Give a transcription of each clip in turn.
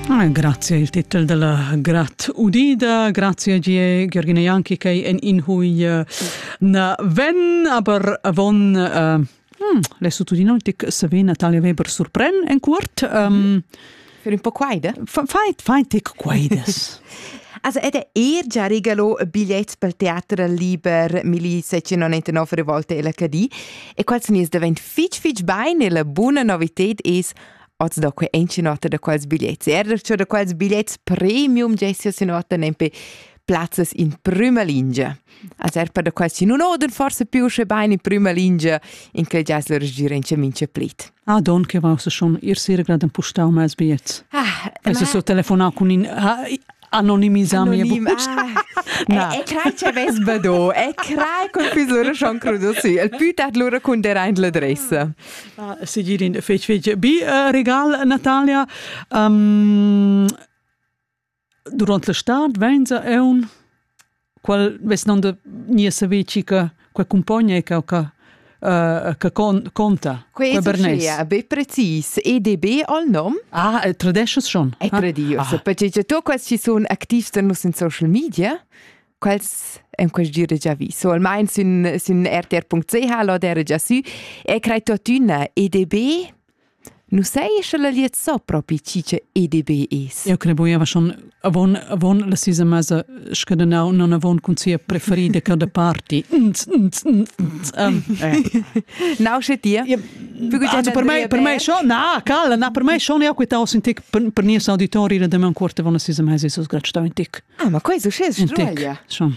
Ah, grazie il titel della grat udida grazie gie Giergina Janki che en in hui eh, na ven aber avon uh, hm, le sutudinautic savé Natalia Weber surpren en cuort um, für un po' quaide fai fai tic quaides Also ed è er già regalo bigliet pel teatro liber Milizia 199 volte LHD E quels nis davent fitg fitg bain e la buna novited es oz da que encinota da quels biglets. Er da da quels biglets premium gessio si nota nempe plazzas in prima lingia. Als er per da quels si nun oden forse più sche bain in prima lingia in quel jazz lor gira in mince plit. Ah, don che va se schon ir sir graden pustau mes biets. Ah, ma... so telefonau cun in ha Anonimisar mia bucca. Na. E crai che ves bado, e crai con füs lura schon crudo si, el pü tard lura cunterà in l'adressa. Ah, Sigirin, fec fec. Bi uh, regal, Natalia. Um, durant la stad vegn sa eun qual vess non da nia saveci che qua compogna e che che Uh, che con, conta quei Bernes. be precis EDB al nom ah e tradesches schon e tradios ah. perché tu quasi ci sono activs da nus in social media quals en quest gire già vi so almain sin sin rtr.ch lo der già su e crei tuttina EDB Nu sai sche la glied so propi chi che EDB es. Eu credo buiava schon avon avon la sisa mesa scadenau non avon cun sia preferida ca da party. Nau sche dir? per me per me schon na calla na per me schon eu queta in tic per nies auditori da demain quarta von la sisa mesa so sgrad stau in tic. Ah ma quei so sches struaglia. Schon.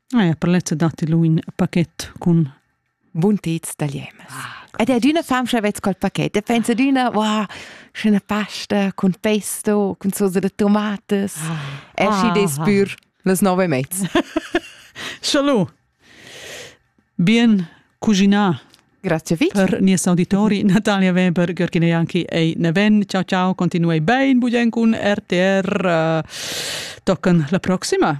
Ah, ja, per lezza datti lu in paket cun buntets da liemas. Ah, Ed è adüna famscha vezz col paket e pensa adüna, wow, schöne pasta con pesto, con sosa de tomates. Ah. E schi des Ah. pür las nove e mezz. Schalu. Bien cuginar Grazie Vic. per nies auditori Natalia Weber, Gürgine Janki e Neven. Ciao ciao, continuei ben bugen cun RTR. Eh, Toccan la proxima.